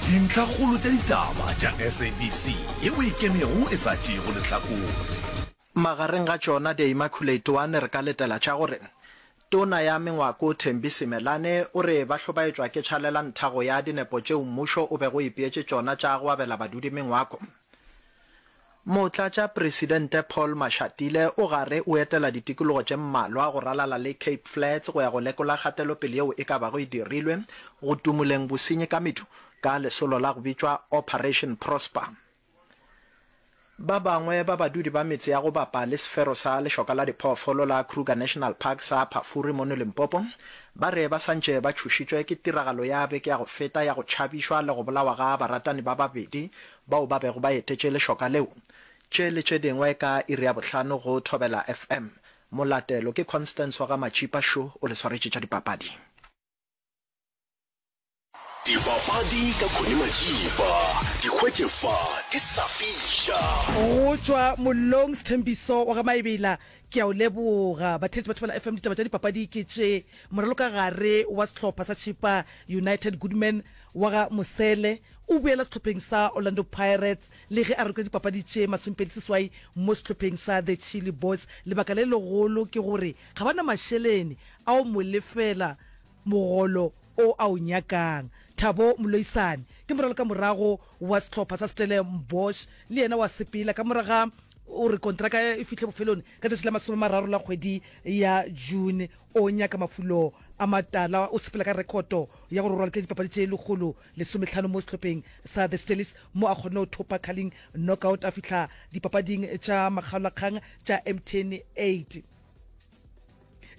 Dintlhakgolo tša ditaba tša SABC yeo e kenego e sa tšeego lehlakore. Magareng ga tšona The Immaculate One re ka letela tša gore, Tona ya Mengwako Thembi Simelane o re ba hlobaetšwa ke tšhalela ntha go ya dinepo tšeo mmušo o bego o ipeetše tšona tša go abela badudi mengwako. Motlatšapresidente Paul Mashatile o gare o etela ditikologo tše mmalwa go ralala le Cape Flats go ya go lekola kgatelopele yeo e ka bago e dirilwe go tumuleng bosenyi ka medu ka lesolo la go bitšwa Operation Prosper. Ba bangwe ba badudi ba metse ya go bapa le sefero sa lešoka la diphoofolo la Kruger National Park sa Phafuri mono Limpopo ba re ba santše ba tšhošitšwe ke tiragalo ya beke ya go feta ya go tšhabišwa le go bolawa ga baratani ba babedi bao ba bego ba etetše lešoka leo. Tše le tše dingwe ka iri ya bohlano go Thobela FM. Molatelo ke Constance wa ga Matšipa šo o le swaretše tša dipapadi. Dipapadi ka Connie Matšipa di hwetše fa ke sa fiša. Go tšwa mollong Sthembiso wa ga Maebela ke a o leboga. Batheetši ba Thobela FM ditaba tša dipapadi ke tše, moralokagare wa sehlopha sa Chippa United Goodman wa ga Mosele, O boela sehlopheng sa Orlando Pirates le ge a rokile dipapadi tše masomepedi seswai mo sehlopheng sa The Chilli Boys. Lebaka le legolo ke gore ga ba na mašelene a go mo lefela mogolo o a o nyakang. Thabo Mloisane ke moralokamorago wa sehlopha sa Stellenbosch le yena o a sepela ka morago ga gore kontraka e fihle bofelong ka tšatši la masome a mararo la kgwedi ya June. O nyaka mafulo a matala, o sepela ka rekhoto ya gore o ralokile dipapadi tše lekgolo lesometlhano mo sehlopheng sa The Stellies mo a kgonne go thopa Carling knockout a fihla dipapading tša makgaolakgang tša Mtn 8.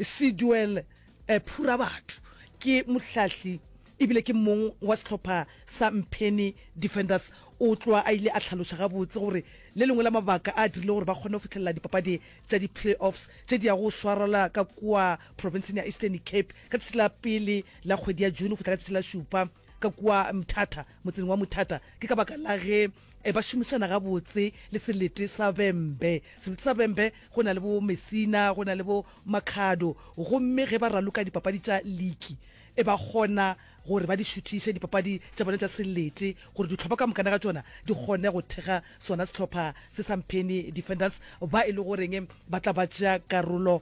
Siduel Phurabatho ke mohlahli ebile ke mong wa sehlopha sa Mpheni Defenders. O tloga a ile a hlaloša gabotse gore le lengwe la mabaka a dirile gore ba kgone go fihlelela dipapadi tša di-playoffs tše di yago go swarelwa ka kua profenseng ya Eastern Cape ka tšatši la pele la kgwedi ya june go fihla ka tšatši la šupa ka kua mthata motseng wa mothata ke ka baka la ge e ba šomišana gabotse le selete sa bembe selete sa bembe go na le bo mesina go na le bo makhado gomme ge ba raloka dipapadi tša liki e ba kgona gore ba di šuthiše dipapadi tša bone tša selete gore ditlhopha ka mokana ga tsona di kgone go thega sona setlhopha se samphene defenders ba e le goreng ba tla ba tšea karolo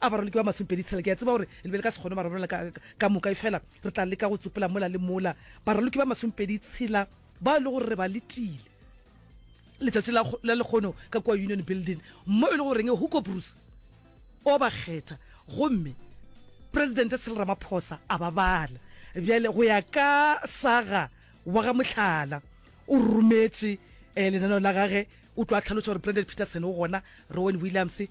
A baroliki ba masomepedi tshela, ke a tseba gore le be le ka se kgone go ba rarollela ka, ka, ka moka, efela re tla leka go tsopela mola le mola. Baroliki ba masomepedi tshela bao e le gore re ba letile letšatši la, la lekgono ka kua Union Building, mo e le goreng Hugo Broos o ba kgetha gomme Presidente Cyril Ramaphosa a ba bala. Bjale go ya ka saga wa ga Mohlala, o rometše eh, lenaneo la gage, o tlo a hlaloša gore Brendan Petersen o gona, Rowan Williams,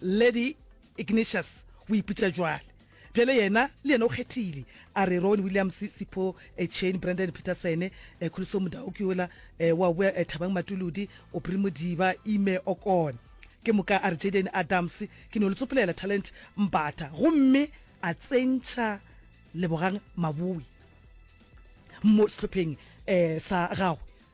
Lady Ignatius o ipotša jwale. Bjale yena, le yena o kgethile, a re, Rowan Williams, Sipho eh, Chain, Brandon Peterson, eh, Kholiso Modau ke yola, eh, wa boa, eh, Thabang Matuludi, Aubrey Modiba, Ime Okon. Ke moka a re, Jayden Adams, ke no le tsopolela Talent Mbatha. Gomme a tsentšha Lebogang Maboe mo sehlopheng eh, sa gagwe.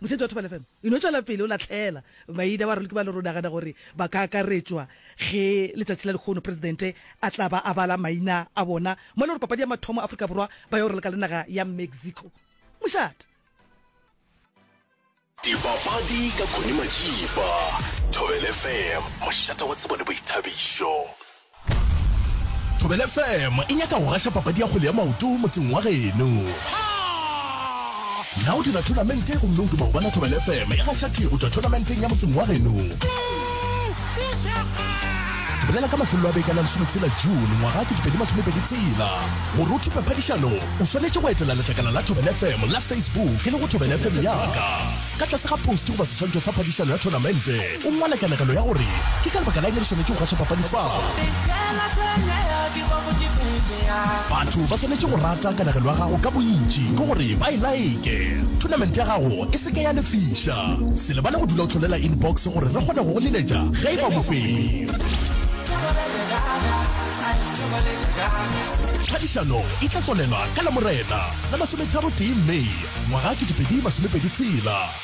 Motšhetši wa Thobela FM e no tšwela pele o lahlela maina baraloki ba lero o nagana gore ba ka akaretšwa ge letšatši la lekgono Presidente a tla ba a bala maina a bona mo le gore papadi ya mathomo Afrika Borwa ba yo raloka le naga ya Mexico. Mošate. Dipapadi ka Connie Majiba, Thobela FM, mošate wa tsebo le boithabišo. Thobela FM e nyaka go gaša papadi ya kgwele ya maoto motseng wa geno. Na o dira thonamente gomme o duma go bona Thobela FM e gaša tee go tšwa thonamenteng ya motseng wa geno? Bolela ka mafelelo a beke la lesometshela June ngwaga 2020 tsela gore o thupe phadišano o swanetše go etela letlakala la Thobela FM la Facebook e le go Thobela FM yaka ka tlase ga post goba seswantšho sa phadišano ya thonamente. O ngwala kanegelo ya gore ke ka lebaka la eng re swanetše go gaša papadi fao. Batho ba swanetše go rata kanegelo ya gago ka bontši ke gore ba e like. Thonamente ya gago e se ke ya lefiša. Se lebale go dula o hlolela inbox gore re kgone go go leletša ge e ba mofenyi. Phadišano e tla tswalela ka Lamorena la masometharo-tee May ngwaga 2026.